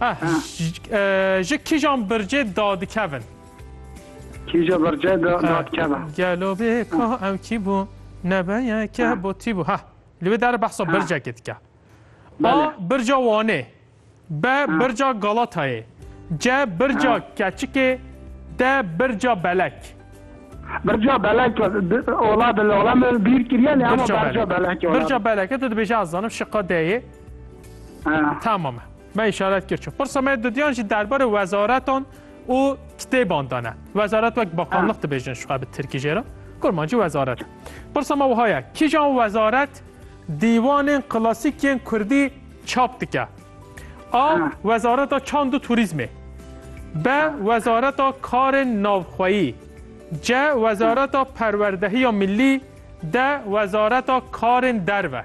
Ah, ji kîjan bircê dadikevin? Kîja bircê dadikevin. Gelo bê ka ew kî bû nebeye ke bo tî bû. Ha, li wê derê behsa bircekê dike. A, birca Wanê. B, birca Galatayê. C, birca Keçikê. D, birca Belek. Birca Belek, ola dilala min bîr kiriye, lê hema birca Belek. Birca Belek, tu dibêje ez zanim şiqa D'yê. Tamam e. Me îşaret kir çi. Pirsa me dudiyan jî derbarê wezaretan û kitêban de ne. Wezaret wek bakanlıq dibêjin şu bi tirkî jê re. Kurmancî wezaret. Pirsa me wiha ye. Kîjan wezaret dîwanên klasîk yên kurdî çap dike? A. Wezareta çand û turîzmê. B. Wezareta karên navxweyî. C. Wezareta perwerdehiya millî. D. Wezareta karên derve.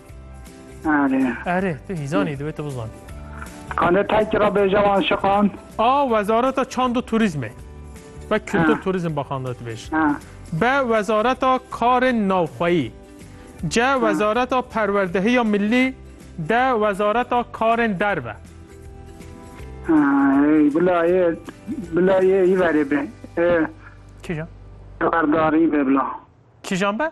Erê. Erê, tu hîzanî divê tu bizan. Kanê tayki ra bêje wan şiqan. A Wezareta Çand û Turîzmê ve Kultur Turîzm Baxanda dibêje. B Wezareta Karên Navxweyî. C Wezareta Perwerdehiya Millî. D Wezareta Karên Derve. Bila yê bila yê î verê be. Kîjan? Berdarî be bila. Kîjan be?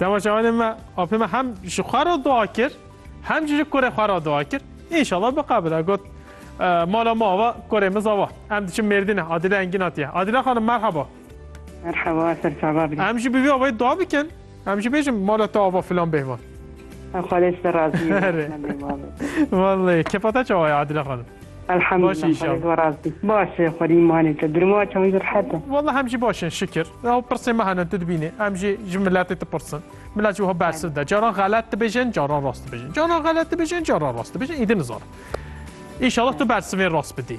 Temaşevanê me apê me hem ji xwe re dua kir hem jî ji kurê xwe re dua kir. Înşallah biqebile got mala me ava kurê min zava. Em diçin Mêrdînê Adile Engîn hatiye. Adile xanim merhaba. Merhaba ser çava bî. Em jî bi vî avayî dua bikin. Em jî bêjin mala te ava filan bêhvan. Xwedê ji te razî. Vallahi kepata çawa ye Adile xanim. Elhamdulillah xwedê zor rast bî. Baş e xwedî îmanê te dirmaça wî rehet e. Wallah em jî baş in şikir. Ew pirsên me hene tu dibînî. Em jî ji miletê dipirsin. Milet jî wiha bersiv de. Caran xelet dibêjin, caran rast dibêjin. Caran xelet dibêjin, caran rast dibêjin. Îdî nizanim. Înşallah tu bersivên rast bidî.